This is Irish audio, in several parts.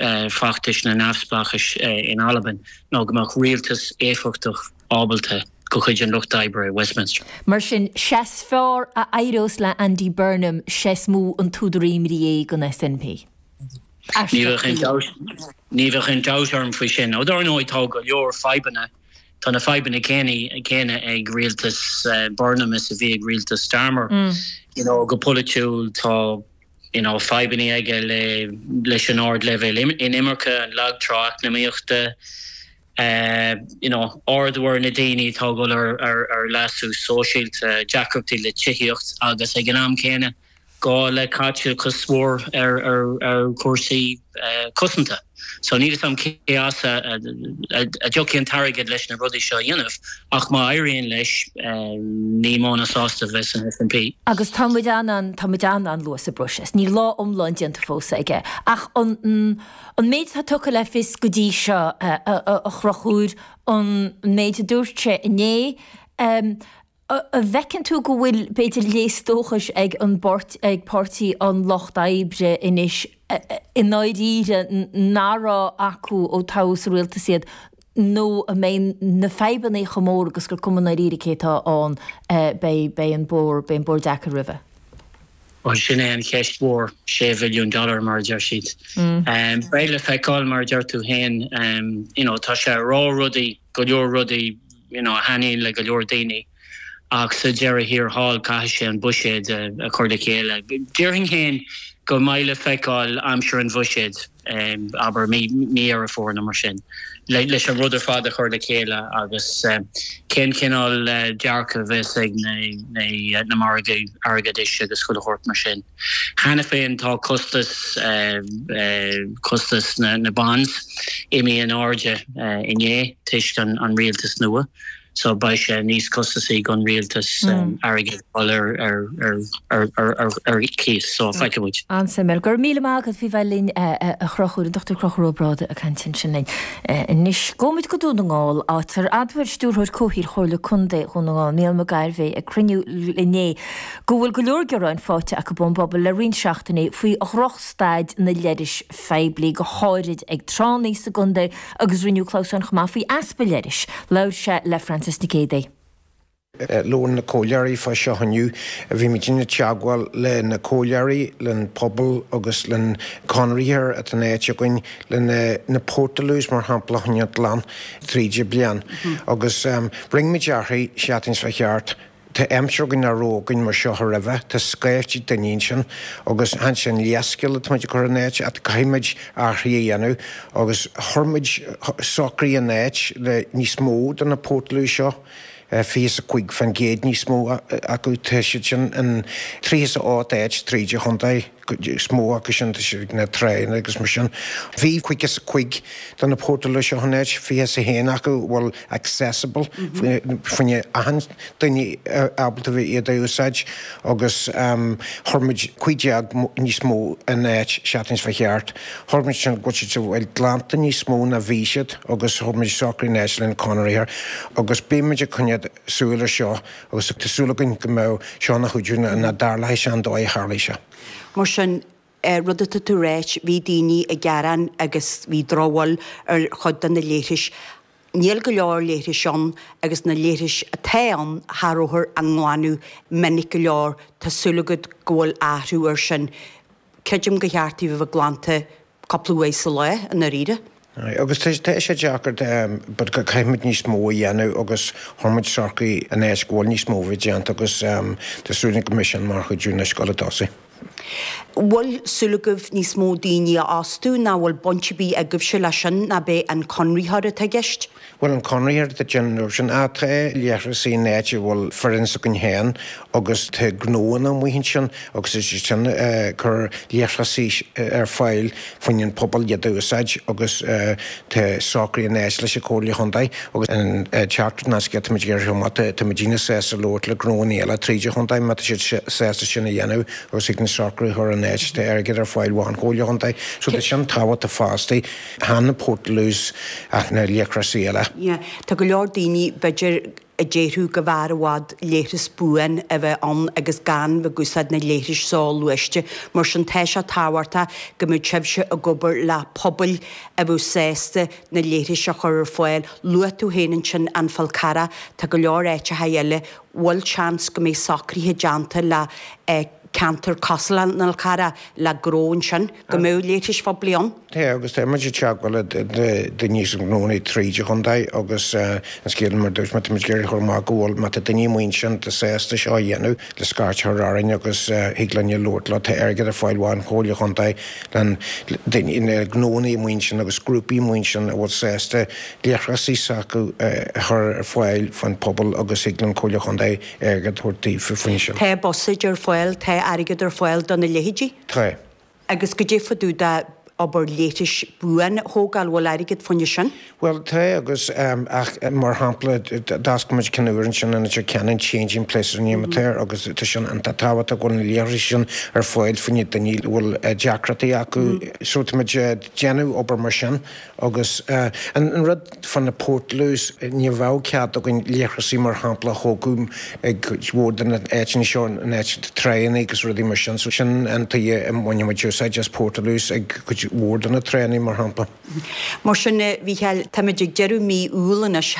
feachtais na neamhspleáchais in Albain ná go mbeadh rialtas éifeachtach ábalta de chuid an Lucht Oibre i Westminster. Mar sin, sea is fearr a éireos le Andy Burnham sea is mó an t-údar imní é don SNP. Aisteach go leor. Ní bheadh aon dabht orm faoi sin. Ó dar ndóigh, tá go leor fadhbanna, tá na fadhbanna céanna ag rialtas Burnham is a bhí ag rialtas Starmer. You know, go polaitiúil, tá. you know, fadhbanna aige le leis an ardleibhéal inimirce, an lag trá eacnamaíochta, you know, arduimhir na daoine atá ag dhul ar ar leasú sóisialta, deacrachtaí le tithíocht agus ag an am céanna gá le caiteachas mór ar ar ar chúrsaí cosanta. So níl 'fhios a'm cé as a dtiocfaidh an t-airgead leis na rudaí seo a dhéanamh ach má éiríonn leis ní mó ná sásta a bheas an SNP. Agus tá muid an an, tá muid an an-luath sa bpróiseas. Níl lá iomlán déanta fós aige. Ach an méid atá tugtha le fios go dtí seo, a Chonchúir, an méid a dúirt sé inné, An bhfeiceann tú go bhfuil, b'fhéidir, léas dóchais ag ag Páirtí an Lucht Oibre anois, i ndáiríre, nach raibh acu ó toghadh sa rialtas iad, nó an mbeidh na fadhbanna chomh mór agus gur cuma ndáiríre cé atá ann, beidh an bóthar deacair roimhe? Bhuel, sin é an cheist mhór, sé bhilliún dollar, mar a deir siad. Beidh le feiceáil, mar a deir tú féin, you know, tá sé ag rá rudaí, go leor rudaí, you know, a thaitníonn le go leor daoine ach sa deireadh thiar thall caithfidh sé an buiséad a chur le chéile. Déarfainn féin go mbeidh le feiceáil aimsir an bhuiséid, abair mí Dheireadh Fómhair nó mar sin, leis an rud ar fad a chur le chéile agus cén cineál dearcadh a bheas ag na margaidh airgeadais agus chuile shórt mar sin. Cheana féin tá costas, costas na bonds, imithe in airde inné toisc an rialtas nua, so beidh sé níos costasaí don rialtas airgead a fháil ar cíos, so feicfidh muid. An-suimiúil. Go raibh míle maith agat faoi bheith linn a Chonchúir, an Dr Conchúr Ó Brádaigh ag caint ansin linn. Anois gabhaimid go Dún na nGall, áit ar admhail Stiúrthóir Comhshaoil Chomhairle Contae Dhún na nGall, Mícheál McGarvey, ag cruinniú inné, go bhfuil go leor gearáin faighte acu ón bpobal le roinnt seachtainí faoi dhrochstaid na leithris phoiblí, go háirid ag tránna sa gcontae, agus rinneadh clamhsán chomh maith faoi easpa leithris. Labhair sé le Frances Nic Géadaigh. Luann na comhairleoirí fá seo inniu, Bhímid ina teagmháil le na comhairleoirí, len pobal agus len conraitheoir atá in áit againn, le na na Portaloos mar shampla a choinneáil glan tríd an bliain. Agus rinneamid athraigh settings fá cheart. Tá aimsir againn nach raibh againn mar seo roimhe, tá scaifte daoine ansin agus chan sin leithscéal atá muid ag cur in áit, ach caithfidh muid athruithe a dhéanamh agus chuir muid socraithe in áit le níos mó de na portaloos seo, 25% níos mó acu, tá siad sin in 38 áit, tríd an chontae. cuid is mó acu sin tá siad ag na tránna agus mar sin. Bhí 55 de na portaloos seo in áit, 21 acu, a bhfuil accessible fá choinne achan duine ábalta a bheith iad a úsáid agus chuir muid 15 níos mó in áit seachtain a chuaigh thart. Chuir muid sin go bhfuil siad a bheith glanta níos mó ná bhí siad agus chuir muid socrú in áit leis an conraitheoir agus beidh muid ag coinneáil súil ar seo. Agus tá súil againn go mbeidh seo ina chuidiú linn, nach dtarlóidh sé an dóigh a tharlaigh sé. Mar sin, an rud atá tú a ráit, bhí daoine ag gearán agus bhí drochbhail ar chuid de na leithris. Níl go leor leithris ann agus na leithris atá ann cha rabhthar á nglanadh minic go leor, tá súil agat go bhfuil athrú ar sin? Creidim gur cheart dóibh a bheith glanta cúpla uair sa lá, i ndáiríre. Aye, agus tá, tá sé deacair, but caithfimid níos mó a dhéanamh agus chuir muid socraithe in áit go bhfuil níos mó a bheith déanta agus tá súil agam go mbeidh sin mar chuidiú anois ag gabháil chun tosaigh. Bhfuil súil agaibh níos mó daoine a fhostú ná bhfuil baint ar bith agaibhse leis sin, ná ab é an conraitheoir atá i gceist? Bhuel, an conraitheoir atá ag déanamh sin ach tá leithreasaí in áit a bhfuil foireann s'againn féin agus tá gnóanna amuigh ansin agus tá siad sin ag cur leithreasaí ar fáil fá choinne an pobal iad a úsáid agus tá socraithe in áit leis an Comhairle Chontae agus an teacht ná scéal atá muid ag iarraidh amach, tá muidinne sásta labhairt le gnóanna eile tríd an Chontae má tá siad sásta sin a dhéanamh agus thig linn socrú a chur in áit tá airgead ar fáil ón Chomhairle Chontae so tá sin tábhachtach fosta. Chan na portaloos ach na leithreasaí eile. Tá go leor daoine, b'fhéidir, a déarfadh go mb'fhearr i bhfad leithreas buan a bheith ann agus gan bheith ag úsáid na leithris soghluaiste. Mar sin, tá sé tábhachtach go mbeadh sibhse ag obair le pobail a bheadh sásta na leithris a chur ar fáil. Luaigh tú féin ansin An Fál Carrach. Tá go leor áiteacha eile. Bhfuil seans go mbeidh socruithe déanta le ceantar cosúil leis an Fhál Carrach le gnóanna ansin go mbeadh leithris phoiblí ann. Sea, agus tá muid ag teagmháil le daoine agus gnóanna tríd an chontae agus an scéal mar a dúirt mé, tá muid ag iarraidh a chur amach go bhfuil, má tá daoine amuigh ansin atá sásta seo a dhéanamh, le scairt a chur orainn agus thig linne labhairt leo. Tá airgead ar fáil ón Chomhairle Chontae le daoine, le gnóanna amuigh ansin agus grúpaí amuigh ansin a bhfuil sásta leithreas s'acu a chur ar fáil fá choinne an phobail agus thig leis an Comhairle Chontae ag tabhairt aghaidh faoina choinne sin. Tá buiséad ar fáil, tá airgead ar fáil do na leithéidí. Tá. Agus goidé fá dtaobh de obair leithris buan a thógáil, bhfuil airgead fá choinne sin? Bhuel, tá agus, ach mar shampla, d'fhoscail muid ceann úr ansin in Leitir Ceanainn, Changing Places in Rinn Mhaoláin, agus tá sé iontach tábhachtach go bhfuil na leithrisí sin ar fáil fá choinne daoine a bhfuil deacrachtaí acu. So tá muid ag déanamh obair mar sin. Agus an rud fá na portaloos, ní bheadh cead againn leithreasaí mar shampla a thógáil ag cuid mhór de na áiteanna seo, in áit tránnaí agus rudaí mar sin, so sin an tuighe a mbaineann muid úsáid as portaloos ag cuid mhór de na tránnaí mar shampla. Mar sin, a Mhícheáil, táimid ag deireadh mí Iúil anois,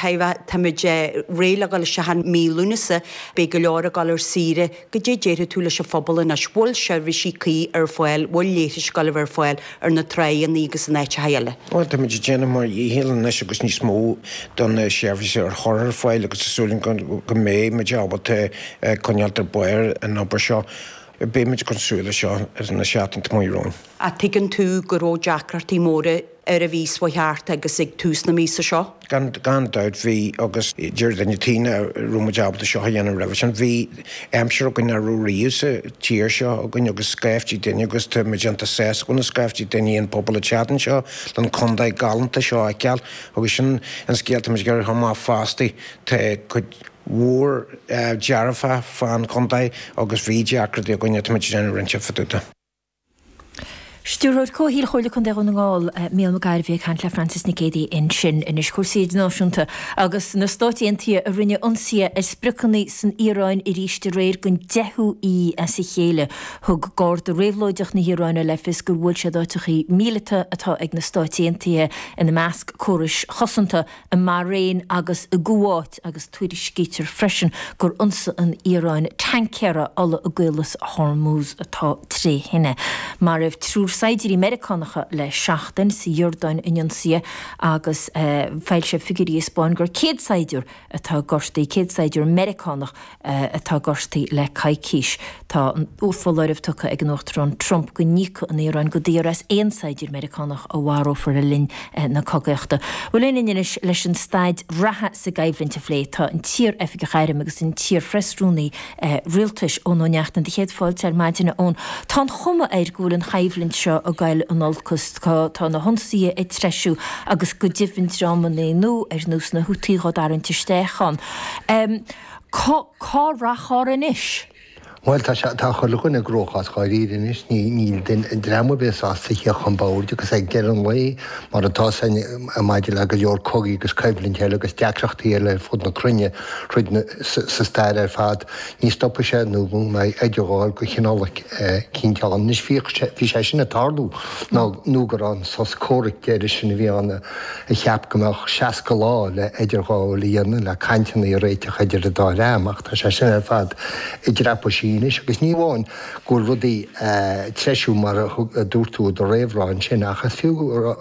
táimid réidh le dul isteach i mí Lúnasa, beidh go leor ag dul ar saoire, Goidé déarfaidh tú leis an phobal anois? Bhfuil seirbhísí cuí ar fáil, bhfuil leithris go leor ar fáil ar na tránnaí agus in áiteacha eile? Bhuel, táimid ag déanamh ár ndícheall anois agus níos mó do na seirbhísí a chur ar fáil agus tá súil againn go mbeidh muid ábalta coinneáilt ar bharr an obair seo. Beidh muid ag coinneáil súil air seo sna seachtainí amach romhainn. Ach tuigeann tú go raibh deacrachtaí móra an mhí seo chuaigh thart agus ag tús na míosa seo. Gan dabht, bhí, agus deir duine ar bith nach raibh muid ábalta seo a dhéanamh roimhe sin, bhí aimsir againn nach raibh riamh sa tír seo againn agus scaiftí daoine agus tá muid iontach sásta go bhfuil scaiftí daoine an pobal ag teacht anseo don condae galánta seo a fheiceáil agus sin an scéal tá muid ag cur amach fosta tá cuid mhór dearfach fán condae agus bhí deacrachtaí againn tá muid déanamh roinnt Stiúrthóir Comhshaoil Chomhairle Contae Dhún na nGall, Mícheál McGarvey ag caint le Frances Nic Géadaigh ansin. Anois cúrsaí idirnáisiúnta agus na Stáit Aontaithe a rinne ionsaithe ar spriocanna san Iaráin aríst aréir don deichiú oíche as a chéile. Thug Garda Réabhlóideach na hIaráine le fios gur bhuail siad áiteachaí míleata atá ag na Stáit Aontaithe, ina measc córais chosanta i mBairéin agus i gCuáit agus tuairiscítear freisin gur ionsaigh an Iaráin tancaer ola i gCaolas Hormuz atá tré thine. Maraíodh triúr saighdiúir Meiriceánacha le seachtain sa Iordáin in ionsaithe agus foilsíodh figiúirí a 'spáin gur 100 saighdiúr atá gortaithe, 100 saighdiúr Meiriceánach atá gortaithe le coicís. Tá foláireamh tugtha ag an Uachtarán Trump go n-íocfaidh an Iaráin go daor as aon saighdiúr Meiriceánach a mharófar le linn na cogaíochta. Bhuel, tá linn anois leis an staid reatha sa gcoimhlint a phlé tá an t-iar-oifigeach airm agus an t-iar-Phreasrúnaí Rialtais, Eoin Ó Neachtain, do Chéad Fáilte ar maidin, a Eoin. Tá an chuma air go bhfuil an choimhlint seo ag goil in olcas. Tá na hionsaithe ag treisiú agus go deimhin dreamanna nua ar nós na Houthi á dtarraingt isteach ann. Cá, cá rachfar anois? Bhuel, tá sé, tá chuile dhuine i gcruachás dháiríre anois. Níl dream ar bith sásta theacht chun boird agus ag deireadh an lae, mar atá san maidir le go leor cogaí agus coimhlint eile agus deacrachtaí eile ar fud na cruinne, tríd na, sa stair ar fad, ní stopfaidh sé nó go mbeidh idirghabháil go chineál eicínt ann. Anois bhíodh sé, bhí sé sin ag tarlú nó gur an sos comhraic deiridh sin a bhí ann. a cheap go mbeadh 60 lá le idirghabháil a dhéanamh le cainteanna a réiteach idir an dá dhream, ach tá sé sin ar fad i dtraipisí anois, agus ní amháin go bhfuil rudaí a' treisiú mar a thug, a dúirt tú i do réamhrá ansin, ach is fiú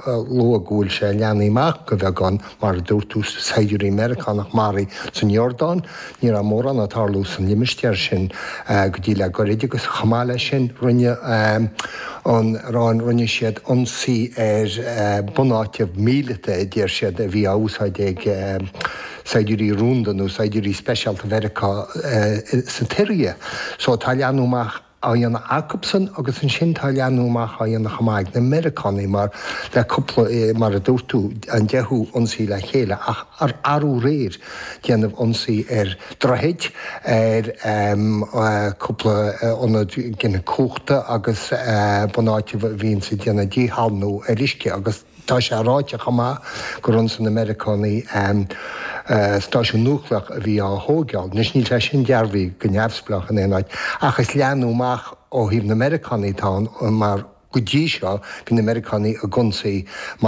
a lua go bhfuil sé a' leathnú amach go bheagán, mar a dúirt tú, saighdiúirí Meiriceánach maraithe san Iordáin, Ní raibh mórán ag tarlú san limistéar sin go dtí le goirid agus chomh maith le sin rinne an Iráin, rinne siad ionsaí ar bunáiteanna míleata a deir siad a bhí á úsáid ag saighdiúirí rúnda nó saighdiúirí speisialta Mheiriceá sa tSiria. So tá leathnú amach. á dhéanamh acubsan agus ansin tá leathnú amach á dhéanamh chomh maith ag na Meiriceánaigh mar le cúpla, mar a dúirt tú, an deichiú ionsaí le chéile ach arú aréir déanamh ionsaí ar droichid, ar cúpla ionad giniúna cumhachta agus bunáiteanna a bhíonns ag déanamh díshalannú ar uisce agus. Tá sé ráite chomh maith gur ionsaigh na Meiriceánaigh an stáisiún núicléach a bhí á thóigeáil. Anois, níl sé sin dearbhaithe go neamhspleách in aon áit, ach is leathnú amach ó thaobh na Meiriceánaigh atá ann, mar go dtí seo, bhí na Meiriceánaigh ag ionsaí mar.